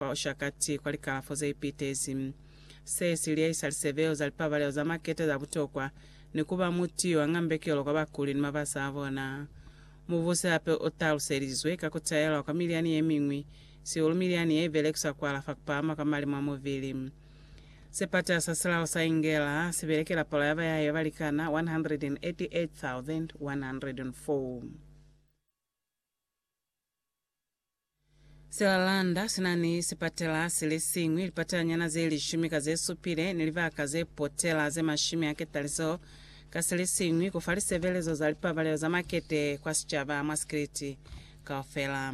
kwa Oshakati kwa likalafo ze ipitezi. Se si liyahisa lisebeo za lipabalelo za makete za butokwa ni ku ba muti yo anga mbekelo kwa bakuli ni mabasa a bona. Mubusi hape u taluselizwe ka ku taelwa kwa milyani ye miñwi, sihulu milyani ye i belekiswa ku alafa ku pahama kwa mali mwa mubili. Sepata sa silao sa Ingela si belekela palo ya bayahiwa ba likana 188,104. Silalanda sina ni sipatela silisiñwi, lipatelanyana zelishumi ka zesupile, ni libaka zepotela zemashumi aketali zeo ka silisiñwi kufa lisebelezo za lipabalelo za makete kwa sicaba mwa sikiliti kaufela.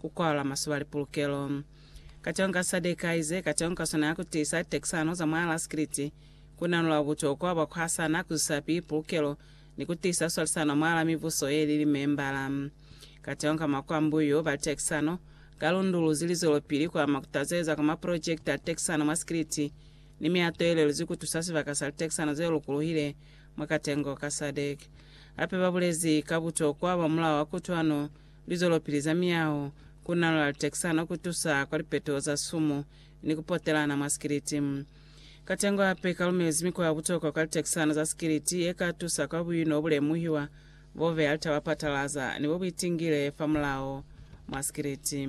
ku kwala masoba li pulukelo. Kacwalo ka sa dekaize, kacwalo ka sona ya ku tiisa tekisano za mwa laskriti, ku nanula butokwa bwa ku hasana, ku zwisa pili pulukelo, ni ku tiisa swalisano mwa la mibuso ye li limembala. Kacwalo ka makwambuyu ba tekisano, ka lunduluzi li zwelopili ku ama ku tazeleza kwa maprojekiti a tekisano mwa sikriti ni mihato ye leluzwi ku tusa sibaka sa litekisano ze lukuluhile mwa katengo ka SADC. Hape ba bulezi ka butokwa bwa mulao wa kutwano Lizwelopili za miyao, ku nalola litexano, ku tusa kwa lipeto za sumu, ni ku potelana mwa sikiliti. Katengo hape i ka lumelezi mikwa ya butokwa kwa litexano za sikiliti ye ka tusa kwa buino bu lemuhiwa, bo beya litaba patalaza, ni bo buitingile fa mulao mwa sikiliti.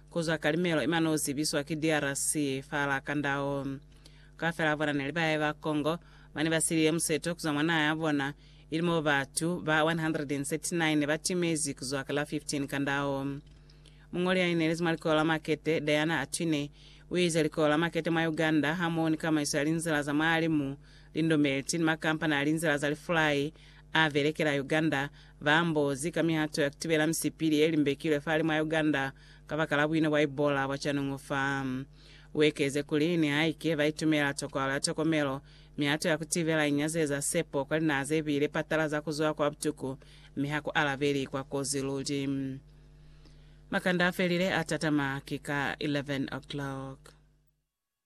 Ku zwa ka limelo ima no zibiswa ki DRC fa la Kandao. Kaufela bona neli bahe ba Congo bane ba siliye museto kuzwa mwa naha ya bona, ili mo batu ba 139 ne ba timezi kuzwa ka la 15 Kandao. Muñoli ya inelezi mwa likoyo la makete, Diana Atwine, u ize likoyo la makete mwa Uganda hamoho ni kamaiso ya linzila za mwahalimu, lindomelti ni makampani a linzila za lifulai a belekela Uganda Ba mbozi ka mihato ya kutibela misipili ye limbekilwe fa limu ya Uganda kabakala buino bwa Ebola bwa canungu fa. Uekeze kuli, nihaike ba itumela tokohalo ya tokomelo, mihato ya kutibela inyazeza sepo kwa linaha zebile patalaza kuzwa kwa butuku mi ha ku alabeli kwa kozi luli. Makanda afelile a tatama ki ka 11 o'clock.